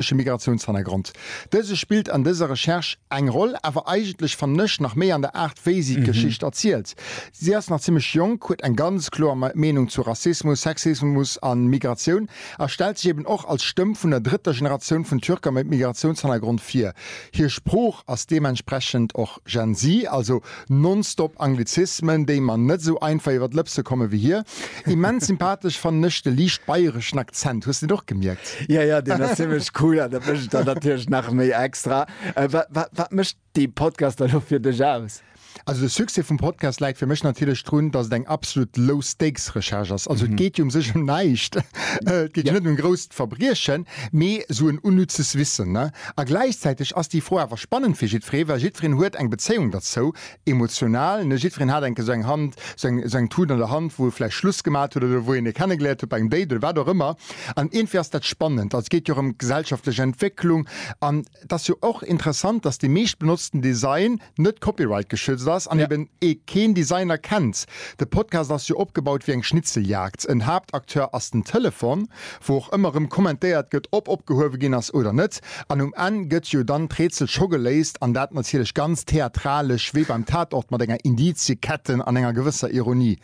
Ech e Migratiounshannergrond. Dëse spillt an dëser Recherche eng Roll, awer eigentlech fannen ech nach méi an der Aart wéi si d'Geschicht erzielt. Si ass nach zimlech jonk, huet eng ganz kloer Meenung zu Rassismus, Sexismus a Migratioun a stellt sech eben och als Stëmm vun der drëtter Generatioun vun Türker mat Migratiounshannergrond vir. Hir Sprooch ass deementsprechend och. Gen Z, also nonstop Anglizismen, déi mer net esou einfach iwwer d'Lëpse komme wéi hie. Immens sympathesch fannen ech de liicht bayreschen Akzent. Hues de deen och gemierkt? Ja, ja, deen ass zimmlech cool an dat mécht et dann natierlech nach méi extra. Wat mécht dee Podcast elo fir dech aus? Also de Succès vum Podcast läit fir mech natierlech drun, dass et eng absolut Low-Stakes-Recherche ass. Also et geet jo um sech ëm näischt, et geet jo net ëm grouss Verbriechen, mee esou en unnützes Wissen. A gläichzäiteg ass déi Fro awer spannend fir jiddweree, well jiddwereen huet eng Bezéiung derzou, emotional, ne? Jiddwereen hat enke sou eng Hand, sou eng, sou eng Tut an der Hand, wou e vläicht Schluss gemat huet oder wou een e kennegeléiert huet bei engem Date oder wat och ëmmer. An iergendwéi ass dat spannend. Also et geet jo erëm d'gesellschaftlech Entwécklung. An et ass jo och interessant, dass dee meeschtbenotzten Design, net Copyright geschützt ass an eben ee keen Designer kennt. De Podcast ass jo opgebaut wéi eng Schnitzeljagd. En Haaptacteur ass den Telefon, wou och ëmmer erëm kommentéiert gëtt, ob opgehuewe ginn ass oder net. An um Enn gëtt jo dann d'Rätsel scho geléist, an dat natierlech ganz theatralesch, wéi beim Tatort, mat enger Indiziekette an enger gewësser Ironie.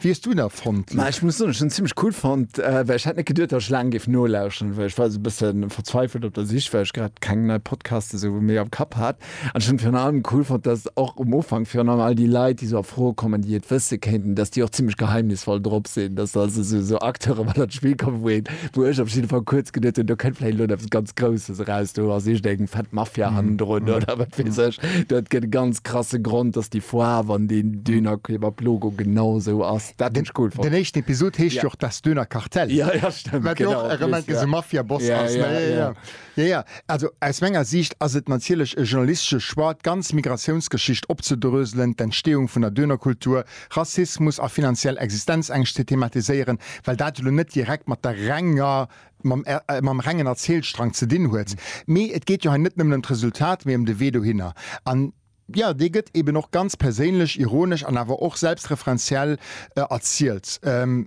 Wéi hues du en fonnt? Ma ech muss soen, ech hunn en zimlech cool fonnt, well ech hätt net geduet, datt ech laang géif nolauschteren, well ech war esou e bësse verzweifelt op der Sich, well ech grad keng nei Podcaste esou méi am Kapp hat. An ech hunn et virun allem cool fonnt, datt och um Ufank virun allem all déi Leit, déi esou a Fro kommen, déi et wësse kéinten, datt déi och zimlech geheimnisvoll drop sinn, datt se also esou esou Acteure mat an d'Spill kommen, wou een, wou ech op jidde Fall kuerz geduet hunn, do kënnt vläicht elo eppes ganz Grousses eraus, do ass iergendeng fett Mafia hannendrun oder wat weess ech, do gëtt e ganz. krasse Grond, dass déi Foarw an deen Dönerkebab-Logo genau esou ass. Dat hunn ech cool fonnt. Den éischten Episod heescht jo och Das Döner Kartell. Ja, ja, stëmmt. Wat jo och erëm enk esou Mafia-Boss ass. Ja, ja. Jo, jo. Also, aus menger Siicht ass et natierlech e journalistesche Choix, d'ganz Migratiounsgeschicht opzedröselen, d'Entstehung vun der Dönerkultur, Rassismus a finanziell Existenzängscht ze thematiséieren, well dat elo net direkt mat der renger mam rengen Erzielstrang ze dinn huet, mee et geet jo hei net nëmmen ëm d'Resultat, mee ëm de Wee dohinner. An jo, dee gëtt eben och ganz perséinlech, ironesch an awer och selbstreferenziell erzielt.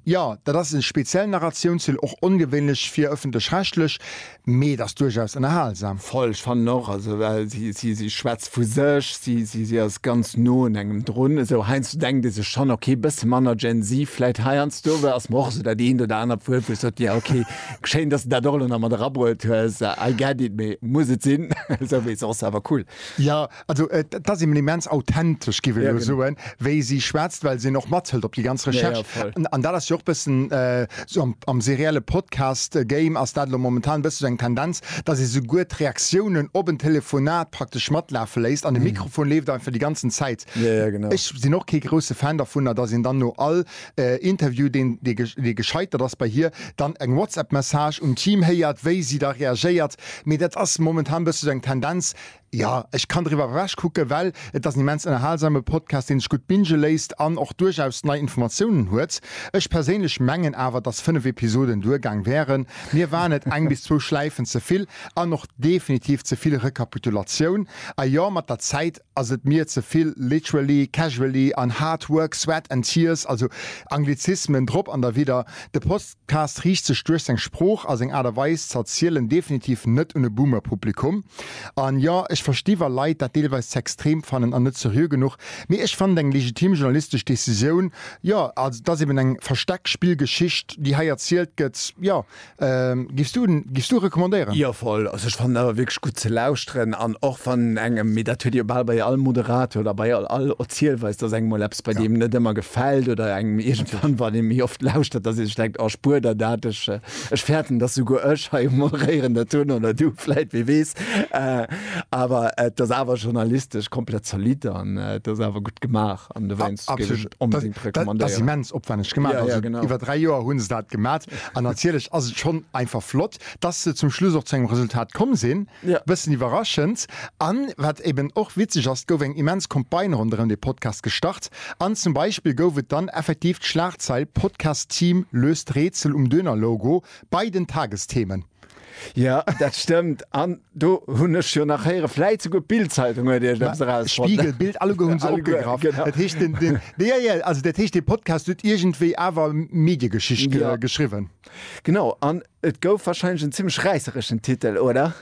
Jo, dat ass e speziellen Narratiounsstil, och ongewéinlech fir ëffentlech-rechtlech, mee et ass duerchaus ënnerhalsam. Voll, ech fannen och, also well si schwätzt. vu sech, si si ass ganz no un engem drun, esou heiansdo denkt ee sech schonn, okay, bësse manner Gen-Z vläit heiansdo, well ass mer och esou dat eent oder anert Wuert, wou ech sot, jo, okay, schéin, dass de dat och elo nach mat erabruet hues, I get it, mee muss et sinn? Esou wéi soss, awer cool. Jo, also et ass eben immens authentesch, giff ech elo soen, wéi si schwätzt, well se en och mathëlt op déi ganz Recherche. An dat ass jo och bëssen. Sou am serielle Podcast Game ass dat elo momentan e bësse sou eng Tendenz, dass ee souguer d'Reaktiounen op en Telefonat praktesch matlafe léisst an de Mikrofon leeft einfach déi ganzen Zäit. Ech sinn och kee grousse Fan dervunner, dass een dann no all Interview, deen dee gescheitert ass bei hir, dann eng WhatsApp-Message un d'Team héiert, wéi si da reagéiert. Mee dat ass momentan e bësse sou eng Tendenz. Jo, ech kann driwwer ewech kucken, well et ass en immens ënnerhalsame Podcast, deen sech gutt binge léisst an och duerchaus nei Informatiounen huet. Ech perséinlech mengen awer, dass 5 Episoden duergaang wären. Mir waren et eng bis zwou Schläifen ze vill an och definitiv ze vill Rekapitulatioun. A jo, mat der Zäit ass et mir ze vill literally, casually an hard work, sweat and tears, also Anglizismen drop an derwidder. De Post. D'Cast riicht sech duerch seng Sprooch a seng Aart a Weis ze erzielen definitiv net un e Boomer-Publikum. An jo, ech versti wa Leit dat deelweis ze extrem fannen an net seriö genuch, mee ech fannen et eng legitim journalistesch Decisioun, jo, also et ass eben eng Versteckspill-Geschicht déi hei erzielt gëtt, jo. Giffs du en, giffs du e recommandéieren? Jo voll, also ech fannen et awer wierklech gutt ze lauschteren an och wann engem, mee dat huet ee jo bal bei all Moderator oder bei all Erzielweis, dass engem mol eppes. bei ja. dem net immer gefällt oder engem irgendwann war dem mir oft lauschtert dass ich denkt oh, spur der dat ich, äh, ich fährten dass du go moderieren der tun oder du vielleicht wie wees äh, aber äh, das aber journalistisch komplett zerlied an äh, das aber gut gemacht an du weinst immens opwendig gemacht ja, ja, genau über drei jahr hun dat gemacht an natürlich also schon einfach flott Dass se zum Schluss och zu engem Resultat komm sinn, e bëssen iwwerraschend. A wat eben och witzeg ass, et gouf eng immens Campagne ronderëm dee Podcast gestart an zum Beispill gouf et dann effektiv d'Schlagzeil Podcast Team löst Rätsel um Döner-Logo bei den Tagesthemen. Jo, dat stëmmt. An Do hunn ech jo nach héieren, vläit souguer d'Bild-Zeitung huet Iech eppes erausfonnt. Spiegel, Bild, alleguer hunn se opgegraff. Genau. Dat heescht, den, den, de, ja, ja, also dat heescht, dee Podcast huet iergendwéi awer Mediegeschicht ge, Ja. geschriwwen. Genau, an et gouf warscheinlech en zimmlech räissereschen Titel, oder?